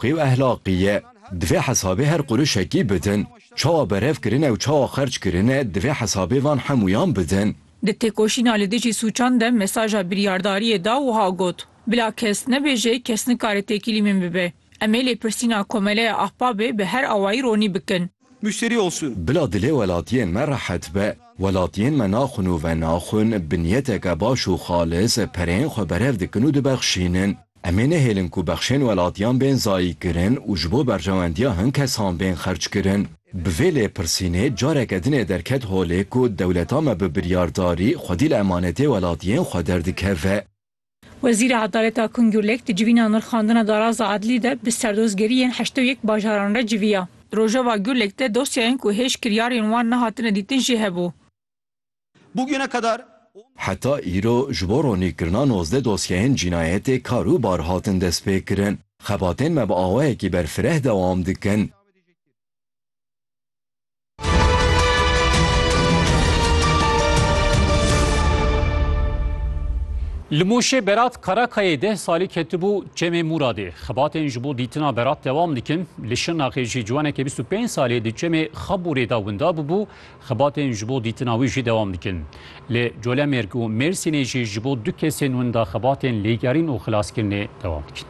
Qîw ehlaqî ye. Divê hesabê her qurişekî bidin. Çawa berev kirine û çawa xerc kirine divê hesabê van hemûyan bidin. Di têkoşîna li dijî sûçan de mesaja biryardariyê da wiha got, Bila kes nebêje kes nikare têkilî min bibe. Em ê lêpirsîna Komeleya Ahbabê bi her awayî ronî bikin. müşteri olsun. Bila dilê welatiyên me rehet be. Welatiyên me naxwin û venaxwin bi niyeteke baş û xalis pereyên xwe berev dikin û dibexşînin. Em ê nehêlin ku bexşên welatiyan bên zayîkirin û ji bo berjewendiya hin kesan bên xerckirin. Bi vê lêpirsînê careke din ê derket holê ku dewleta me bi biryardarî xwedî li emanetê welatiyên xwe derdikeve. Wezîra Edaleta Kung Gurlek di civîna nirxandina daraza edlî de bi serdozgeriyên heştê û yek bajaran re civiya. Di rojeva Gurlek de dosyayên ku hêj kiryarên wan nehatine dîtin jî hebû. Bugüne kadar on. Heta îro ji bo ronîkirina nozdeh dosyeyên cînayetê kar û bar hatin destpêkirin. Xebatên me bi awayekî berfireh dewam dikin. Li Mûşê Berat Karakayê deh salî ketibû Çemê Mûradê. Xebatên ji bo dîtina Berat dewam dikin. Li Şirnaxê jî ciwanekê bîst û pênc salî di Çemê Xabûrê de winda bûbû. Xebatên ji bo dîtina wî jî dewam dikin. Li Colemêrg û Mêrsînê jî ji bo du kesên winda xebatên lêgerîn û xilaskirinê dewam dikin.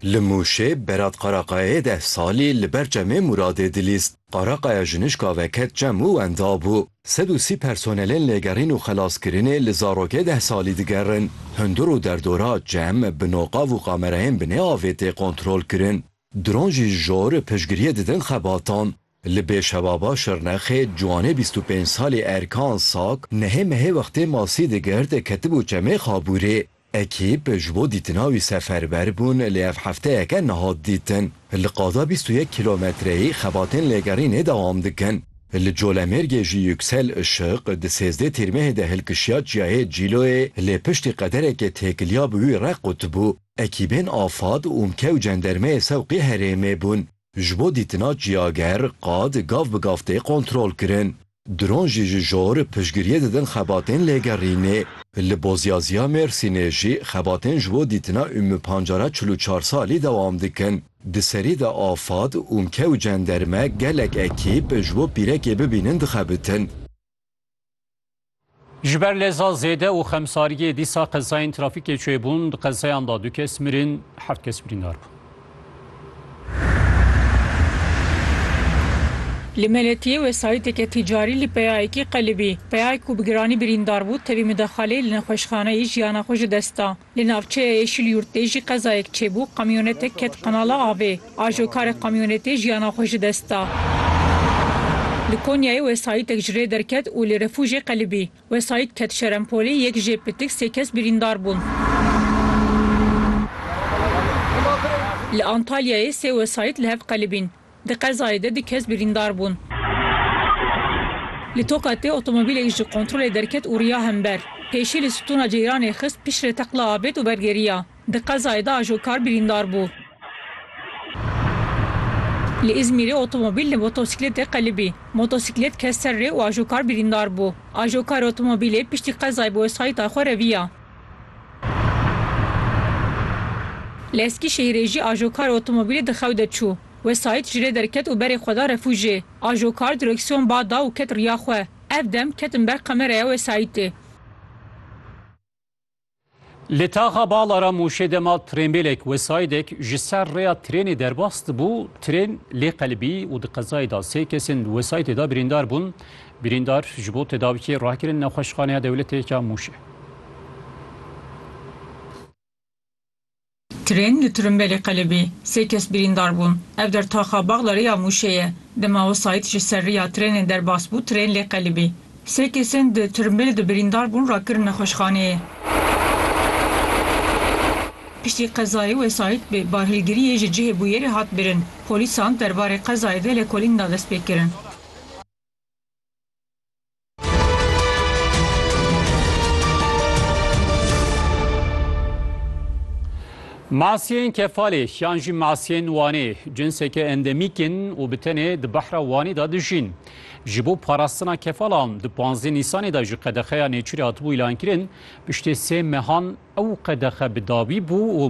Li Mûşê Berat Qaraqayê deh salî li ber çemê Mûradê dilîst. Qaraqaya ji nişka ve ket çem û wenda bû. Sed û sî personelên lêgerîn û xelaskirinê li zarokê deh salî digerin. Hundir û derdora çem bi noqav û kamerayên binê avê tê kontrolkirin. Dron jî jor piştgiriyê didin xebatan. Li Bêşevava Şirnexê ciwanê bîst û pênc salî Erkan Sak nehê mehê wextê masî digert ketibû çemê Xabûrê. Ekîp ji bo dîtina wî seferber bûn lê ev hefteyeke nehat dîtin. Li qada bîst û yek kîlometreyî xebatên lêgerînê dewam dikin. Li Colemêrgê jî Yuksel Işık di sêzdeh tîrmehê de hilkişiya çiyayê Cîloyê lê piştî qedereke têkiliya bi wî re qutbû. Ekîbên Afad, UMKE û cendermeyê Sewqî herêmê bûn. Ji bo dîtina ciyager, qad gav bi gav tê kontrolkirin. Dron jî ji jor piştgiriyê didin xebatên lêgerînê. Li Bozyazîya Mêrsînê jî xebatên ji bo dîtina Ümmü Pancara çil û çar salî dewam dikin. Di serî de afad, ûmke û cenderme gelek ekîp ji bo pîrekê bibînin dixebitin. Ji ber leza zêde û xemsariyê dîsa qezayên trafîkê çêbûn, di qezayan de du kes mirin, heft kes birîndar bûn. Li Meletiyê wesayîteke tîcarî li peyayekî qelibî. Peyayek ku bi giranî birîndar bû, tevî midexaleyê li nexweşxaneyê jiyana xwe ji dest da. Li navçeya Yeşilyurt tê jî qezayek çêbû, kamyonetek ket qenala avê. Ajokarê kamyonetê jiyana xwe ji dest da. Li Konyayê wesayîtek ji rê derket û li Refûjê qelibî. Wesayît ket Şerempolê, yek jê pitik sê kes birîndar bûn. Li Antalyayê sê wesayît li hev qelibîn. Di qezayê de du kes birîndar bûn. Li Tokatê otomobîlek ji kontrolê derket û riya hember. Pêşî li stûna ceyranê xist, piştre teqla avêt û wergeriya. Di qezayê de ajokar birîndar bû. Li Îzmîrê otomobîl li motosîkletê qelibî. Motosîklet ket ser rê û ajokar birîndar bû. Ajokarê otomobîlê piştî qezayê bi wesayîta xwe reviya. Li Eskîşehîrê jî ajokar otomobîlê di xew de çû. Wesayît ji rê derket û berê xwe da refûjê. Ajokar direksiyon ba da û ket riya xwe. Ev dem ketin ber kameraya wesayîtê. Li taxa Balara Mûşê dema trênbêlek wesayîdek ji ser rêya trênê derbas dibû, trên lê qelibî û di qezayê de sê kesên wesayîtê de birîndar bûn. Birîndar ji bo tedawîkê rakirin Nexweşxaneya Dewletê ya Mûşê. Tirên li Tirimbêlê qelibî, sê kes birîndar bûn. Ev der taxa Baxdarê ya Mûşê ye. Dema wesayît ji ser riya tirênê derbas bû tirên lê qelibî. Sê kesên di Tirimbêlê de birîndar bûn rakirin nexweşxaneyê. Piştî qezayê wesayît bi barhilgiriyê ji cihê bûyerê hat birin. Polîsan derbarê qezayê de lêkolîn da destpêkirin. Masiyên Kefalê yan jî masiyên Wanê cinseke endemîk in û bi tenê di behra Wanê de dijîn. Ji bo parastina kefalan di panzdeh Nîsanê de ji qedexeya nêçîrê hatibû îlankirin, piştê sê mehan ew qedexe bi dawî bû û